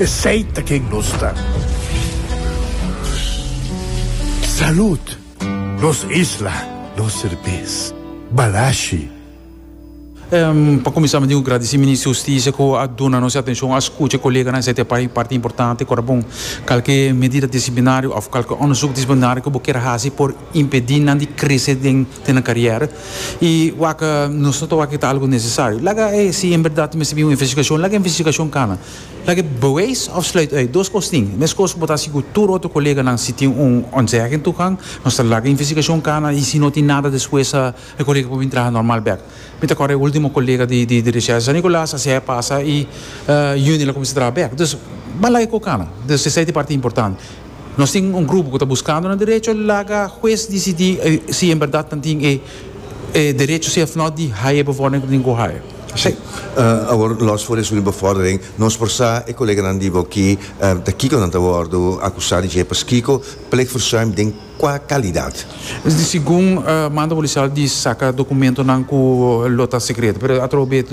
Esey ta ken nos ta. Salud! Nos isla, nos serbes. Balashi. Pa kuminsá mi tin ku gradisí Minister di Hustisia ku a duna nos e atenshon, a skucha e koleganan esei ta e pai parti importante. Kòrda bon, kalke medida disiplinario òf kalke òndersuk disiplinario ku bo kier hasi por impedí nan di krese den nan karièra. I wak nos no ta wak ku e ta algu nesesario. Laga e si en bèrdat mester bin un investigashon, laga e investigashon kana. Laga bewijs of sluit uit dos kos tin. E meskos bo ta si ku tur otro koleganan si tin un ontzegging tukang, nos ta laga investigashon kana i si no tin nada despues sa e kolega por bin traha normal bek. Mi ta kòrda e último kolega di di Richesse San Nicolas a siae pasa i Yunil a kuminsá traha bek. Dus, bo a laga e ko kana. Dus esei ta e parti importante. Nos tin un grupo cu ta buscando nan derecho, laga hues dicidi si en berdad nan tin e derecho si of no di haya e bevordering cu tin cu haya. Si. Awor, los for esun di bevordering, nos por sa e coleganan di Bokey ta kico nan ta wordo acusa di dje, paskico plegverzuim den cua calidad? Segun mando policial di saca documentonan cu lo ta secreto, pero atrobe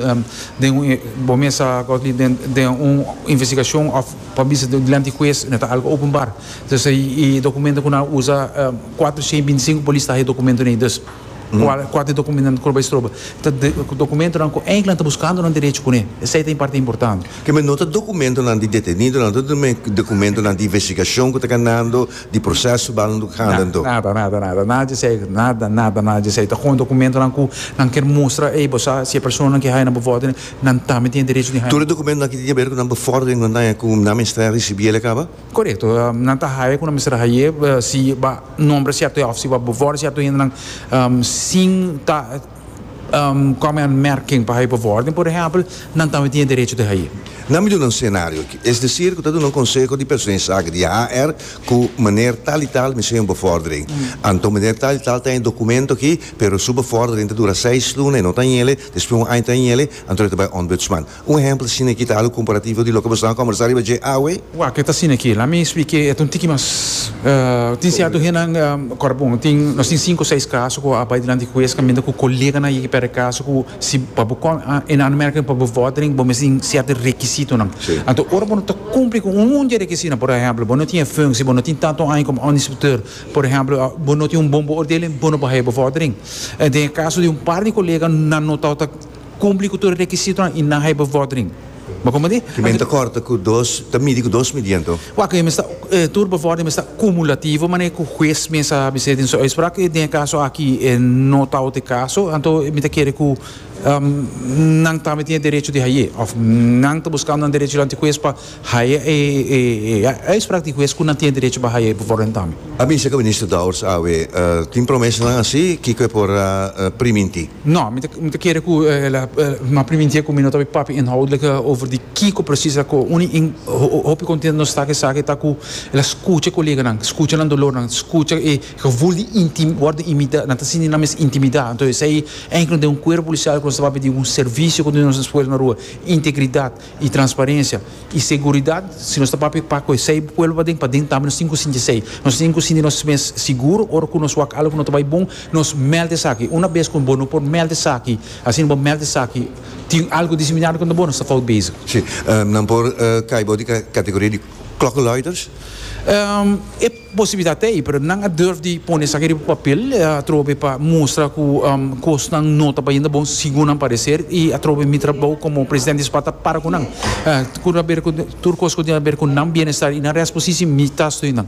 den un, bo mesa Godley, den un investigacion of. Pa bisa dilanti hues no ta algo openbar. Dus e documento cu nan a usa, cuatrochenta y binti cinco polis ta ha e documentonan ahí. Dus, cual, cua ta e documentonan cu lo bay stroba? Ta documentonan cu eindelijk ta buscando nan derecho cu ne. Esey ta e parti importante. Ke men no ta documentonan di detenidonan, no ta men documentonan di investigacion cu ta ganando, di proces su balnan cu ta ganando. Na, nada, nada, nada, nada di esey, nada, nada, nada di esey. Ta con e documentonan cu nan kier mustra, ey, bo sa si e personanan cu e haya nan bo voto, nan tambe tin e derecho di haya. Tur e dokumentonan ki tin ke ber ku nan befòrdering ku nan ta haya ku nan mester a risibí el a kaba? Korekto, nan ta haya ku nan mester a hay'é si bo a nombra sierto hende òf si bo a befòrdera sierto hendenan sin ta kòm e anmèrking pa haya befòrdering, por ehèmpel, nan tambe tin e derecho di hay'é. Nan mi duna un senario aki, es desir ku ta duna un konseho di persona di saki di HR ku meneer tal i tal mester haya un befòrdering. Anto meneer tal i tal ta haya e dokumento aki, pero su befòrdering ta dura seis luna, e no ta haya el. Despues un aña ta hiele, anto el ta bai Ombudsman. Un ehempel asina aki ta alu comparativo di loke boso a conversa riba dje awe. Wak ke ta asina aki, laat mi spik e et un tiki mas. Tin cierto hennan, ora bon, tin, nos tin cinco, seis caso cu a bai dilanti di huez caminda cu coleganan yeki perde caso cu si pa bo con, en aanmerking pa bo vordering bo mes tin cierto requisitonan. Anto ora bo no ta cumpli cu un un dje requisitonan, por ehempel, bo no tin e functie, bo no tin tanto aña como onderinspecteur, Por ehemplo, bo no tin un bon beoordeling, bo no por haya bevordering. En den e caso di un par di colega nan no tau ta cumpli cu tur e requisitonan y nan haya bevordering. Bo comprende? Cu men ta corta cu dos, ta midi cu dos midiento. Waak, e mester, e tur bevordering mester cumulativo, manera cu huez mes a bisé den su uitspraak. Y den e caso aki e no tau ta e caso, anto mi ta kere cu nan tambe tin e derecho di haye of nan ta buscando nan derechonan di huez pa. Haya e e uitspraak di hues ku nan tin derecho pa haya e bevoordeelingtamen. A bisa ku Minister Dowers awe tin promesanan asi, kiko e por a primintí? No, mi ta mi ta kere ku ela a primintí e ku mi no ta bai papia inhoudlike over di kiko presis a ko uni in hopi kontentu nos ta ku esaki ta ku ela skucha e koleganan, skucha nan dolornan, skucha e gevoel di inti wòrdu imida nan ta sinti nan mes intimida. Anto esei enkele den un kuerpo polisial ku nos ta papia di un servicio ku nos ta puesta na rua, integridat, y transparencia y seguridad si nos ta papia pa cu esey pueblo paden paden tambe nos tin cu sinti esey nos tin cu sinti nos mes seguro ora cu nos wak algo no ta bay bon nos meld esaki una bes cu bo no por meld esaki asi no bo meld esaki tin algo diseminado contra bo nos ta fout bezig. Si nan por cay bo di ca categoria di klokkenluiders? Posibilidat ta ei, pero nan a durf di pone esaki riba papel atrobe pa mustra cu cosnan no ta bayendo bon segun nan parecer y atrobe mi trabou como president di spa ta para cu nan. Tur cos cu tin haber cu nan bienestar y nan reasposici mi ta stui nan.